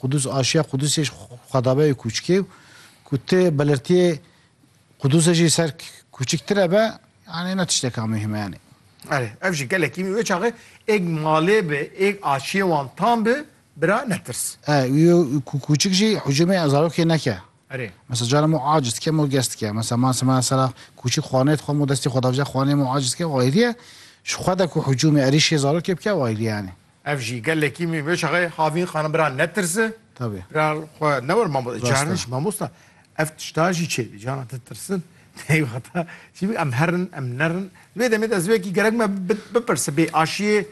Qudûs aşiya Qudûsê ji xwedabeyê kûçik ê û ku ti belirtiyê Qudûsê jî ser kûçiktir e be, yanî ne tişteka muhîm e yanî. Erê, ev jî gelekî wê çaxê êk malê bi, êk aşiyê wan tam bi, bira netirs. E, wî ku kûçik jî hicûmê zarokê neke. Erê. Mesela carên mo aciz dike, mo gest dike. Mesela ma sema sera kûçik xwanê dixwe, mo destê xwedavja xwanê mo aciz dike, wayîrî ye. Ji xwe de ku hicûmê, erîşê zarokê bike wayîrî ye yanî. Ev jî gelekî min vê şaxê havîn xanim bira netirse. Tabî. Bira xwe newir mamosta. Cariniş mamosta. Ev tişta jî çê bî cana te tirsin. Tey wexta çî bî em herin em nerin. Vê demê de ez wekî gerek me bipirse bê aşiyê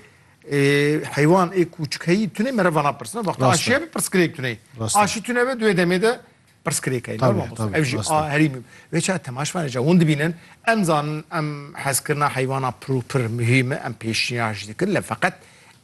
heywan ê kûçkeyî tunê mere vana pirsina. Wexta aşiye bi pirsgirêk tunê. Aşî tune ve duê demê de Pirsgirêk e normal bû. Ev jî a herîmî bû. Vê çav temaşvanê ca hûn dibînin, em zanin em hezkirina heywana pir û pir muhîm e, em pêşniyar jî dikin lê feqet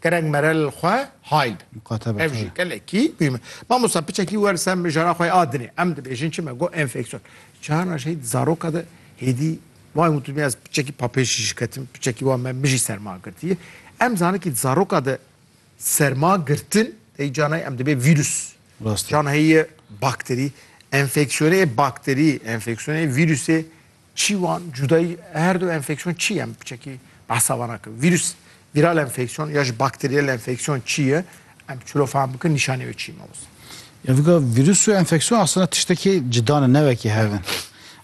gerek mere li xwe hayl be. Muqatebe. Ev jî gelekî muhîm e. Mamosta piçekî wer ser mijara xwe a dinê. Em dibêjin çi me got enfeksiyon. Carna jî heyî zaroka de hêdî wan got dû ez piçekî papêj jî ketim piçekî wan me min jî serma girtiye. Em zanikî zaroka de Serma girtin tey can heye em dibê vîrus. Rastî. Can heye bakterî. Enfeksiyonê yê bakterî, enfeksiyonê yê vîrusê çî wan cudayî her du enfeksiyon çî em çekî behsa wan nakin. Vîrus vîral enfeksiyon ya ji bakteriyel enfeksiyon çî ye em çilo fehm bikin nîşanê wê çî ye mamosta. Ya vika vîrus û enfeksiyon aslında tiştekî cida ne ne wekî hev in.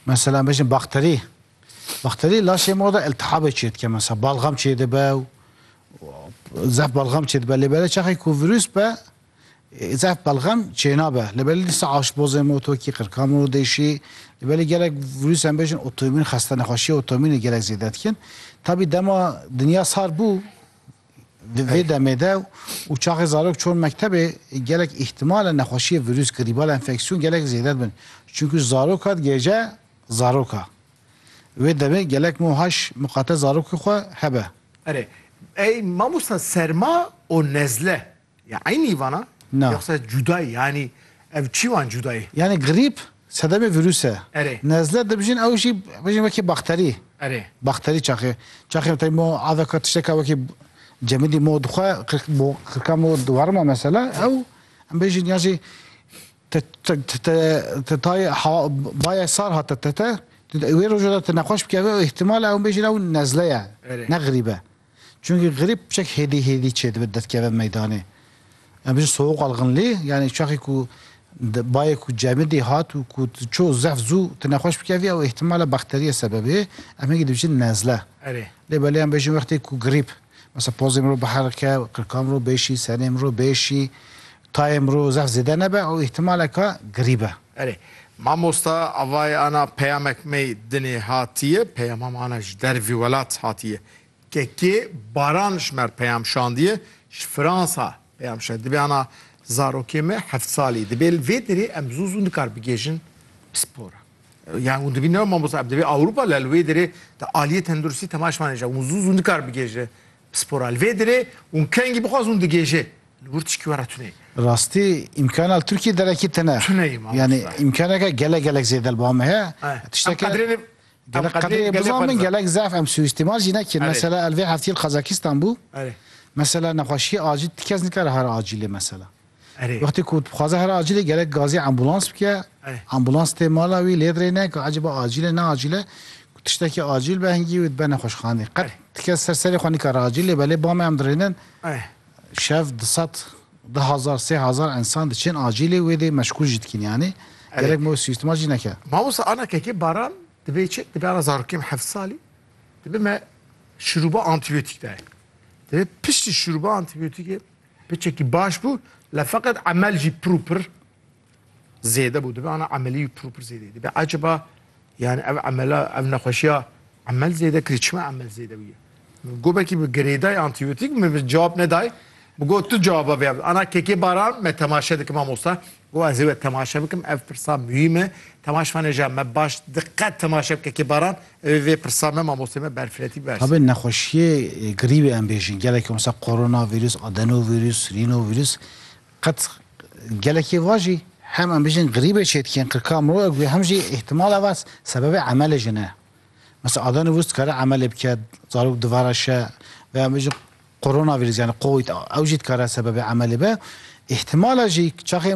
Mesela em bêjin bakterî Bakterî laşê ma de îltihabê çê dike mesela balgam çê dibe û zehf balgam çê dibe lê belê çaxê ku vîrûs be zehf balgam çê nabe lê belê dîsa aşbozê ma tokî qirka ma dêşî lê belê gelek vîrûs em bêjin otoîmîn xeste nexweşîya otoîmînê gelek zêde dikin tabî dema dinya sar bû vê demê de û çaxê zarok çûn mektebê gelek îhtimale nexweşîyê vîrûs grîbal enfeksîyon gelek zêde dibin çunku zarok hat gêje Zaroka. Wê demê gelek mo haş miqate zarokê xwe hebe. Erê. Ey mamosta serma û nezle ya eynî vana Na. yoxsa cuda ye yanî ev çî wan cuda ye? Yanî grîp sedemê vîrûs e. Erê. Nezle dibijin ew jî bijin wekî bakterî. Erê. Bakterî çaxê. Çaxê tey mo aveka tişteka wekî cemidî mo dixwe qirk bo qirka mo diwarima mesela ew em bêjin ya jî Te tayê bayê sar hate te te. Wê roja de te nexweş bikeve û îhtîmal e ew bêjin ew nezle ye ne grîb e. Çunkî grîb çek hêdî hêdî çê dibe detkeve meydanê. Em bêjin soğuk algınlığı yanî çaxê ku bayê ku cemidî hat û ku tu çû zehf zû te nexweş bikevî ew îhtîmal e bakterîye sebebê em hingî dibêjin nezle. Lê belê em bêjin wextê ku grîb mesela pozê mirov biherike, qirka mirov bêşî, senê mirov bêşî Tayê mirov zaf zêde nebe ew îhtimaleke girî be. Erê mamosta avayê ana peyamek mey dinê hatiye peyama me ana ji dervî welat hatiye kekê baran ji mer peyam şandiye ji fransa peyam şa dibê ana zarokê me heft salî dibê li vê derê em zû zû nikar bigêjin pispora yan hûn dibîne mamosta em dibê awropa lel wê derê te aliyê tenduristî tema ji man hêja hûn zû zû nikar bigêje Spora li vê dirê hûn kengî bixwaz hûn digêje. Li wir tişkî we re tuneyî. Bi rastî îmkana li Tirkiyê derekî tune. Tuneyî mamosta. Yanî îmkaneke gelek gelek zêde li ba me heye. Em Tişteke qedrê gelek qedrê biza min gelek zaf em sûîstîmal jî nekin. Mesela el vê heftî li Qazakistan bû. Mesela nexweşîyê acîl ti kes nikare here acîlê mesela. Wextê ku dixwaze here acîlê gerek gazê ambûlans bike, ambûlans tê mala wî lê dirêne ku ecêba acîl e ne acîl e, ku tiştekî acîl be hingî wê dibe nexweşxanê. Qet ti kes ser serê xwe nikare acîl lê be lê bamê em dirênin şev di sed di hezar sê hezar ensan diçên acîlê wê dê meşgûl jî dikin yanî gerek me wê sîstema jî neke. Mamosta ana kekê baran divê çi divê ana zarokê me heft salî dibe me şirûba antîbiyotîk dayê divê piştî şirûba antîbiyotîkê Piçekî baş bû le feqet emel jî pir û pir zêde bû. Dibe ana emelî û pir û pir zêdeyî. Dibe eceba yani ev emela ev nexweşiya emel zêde kirî çima emel zêde bûye. Min gobekî bi girêday antîbiyotîk min bi cewab neday. Min got tu cewaba vê ana kekê baran me temaşe dikim mamosta. Bo ez ê we temaşe bikim ev pirsa muhîm e. Temaşvanê ja me baş diqet temaşe bike kê baran ew ê vê pirsa me mamosteyê me berfiretî berse. Tabi nexweşiyê grîbê em bêjin gelekî wisa mesela koronavîrus, adenowîrus, rînovîrus qet gelekî va jî hem em bêjin grîbê çêdikên qirka mirov ev hem jî îhtimal eva sebebê emelê jin e. Mesela adenowîrus dikare emelê bike zarok divara şe veya em bêjin koronavîrus yanî covid ew jî dikare sebebê emelê be. Îhtimala jî çaxê